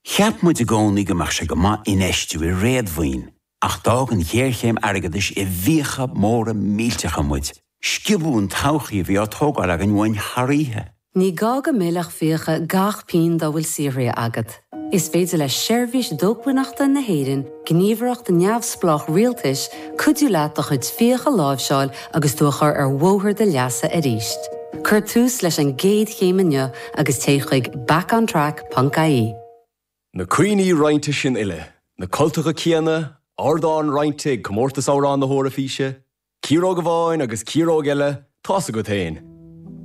Cheap muid i gcónaí go mbeadh sé go maith infheistiú i réadmhaoin ach d'fhág an ghéarchéim airgeadais i bhfiacha móra millteacha muid. Sciobadh an todhchaí a bhí á tógáil againn uainn thar oíche. Ní gá go millfeadh fiacha gach pingin dá bhfuil saothraithe agat. Is féidir le Seirbhís Dócmhainneachta na hÉireann, gníomhaireacht neamhspleách rialtais, cuidiú leat do chuid fiach a láimhseáil agus tú a chur ar bhóthar do leasa arís. Cuir tús leis an gcéad chéim inniu agus téigh chuig backontrack.ie. Na cuimhní roinnte sin uile, na cultacha céanna, ardán roinnte ag Comórtas Amhrán na hEoraifíse, ciaróg amháin agus ciaróg eile, tá a fhios agat féin.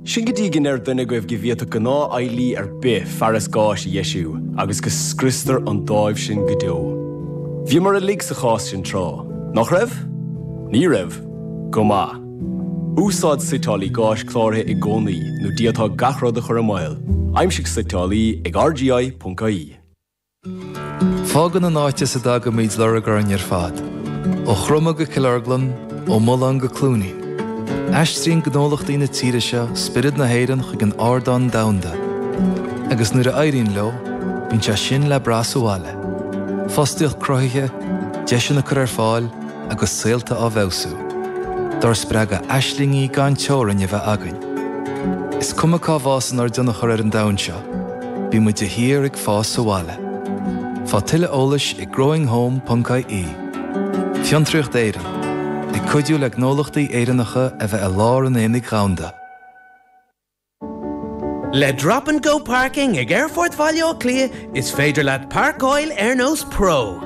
Sin go dtí go ndeir duine agaibh go bhféadfadh gnáthfheighlí ar bith fearas gáis a dheisiú agus go scriostar an dáimh sin go deo. Bhíomar uilig sa chás sin tráth, nach raibh? Ní raibh? Go maith. Úsáid suiteálaí gáis cláraithe i gcónaí nó d'fhéadfá gach rud a chur i mbaol. Aimsigh suiteálaí ag RGI.ie. Fágann an áit as a dtagaimid lorg orainn ar fad, ó Chroma go Cill Orglan, ó Mullán go Cluainín. Aistríonn gnólachtaí na tíre seo spiorad na hÉireann chuig an ardán domhanda, agus nuair a éiríonn leo, bíonn sé sin le brath sa bhaile. Fostaíocht cruthaithe, deiseanna á gcur ar fáil, agus saolta á bhfeabhsú, dár spreagadh aislingí gan teorainn a bheith againn. Is cuma cá bhfásann ár dtionchar ar an domhan seo, bíonn muid de shíor ag fás sa bhaile. Faigh tuilleadh eolais ag growinghome.ie. Fiontraíocht Éireann, ag cuidiú le gnólachtaí Éireannacha a bheith i lár an aonaigh dhomhanda. Le Drop and Go Parking ag Aerfort Bhaile Átha Cliath is féidir leat páirceáil ar nós pro.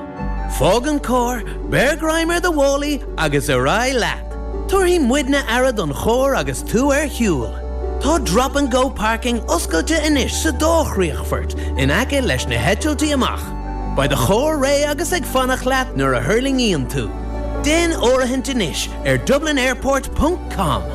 Fág an carr, beir greim ar do mhálaí agus ar aghaidh leat! Tabharfaidh muidne aire don charr agus tú ar shiúl. Tá Drop and Go Parking oscailte anois sa dá chríochfort in aice leis na heitiltí amach. Beidh do charr réidh agus ag fanacht leat nuair a thuirlingíonn tú. Déan áirithint anois ar dublinairport.com.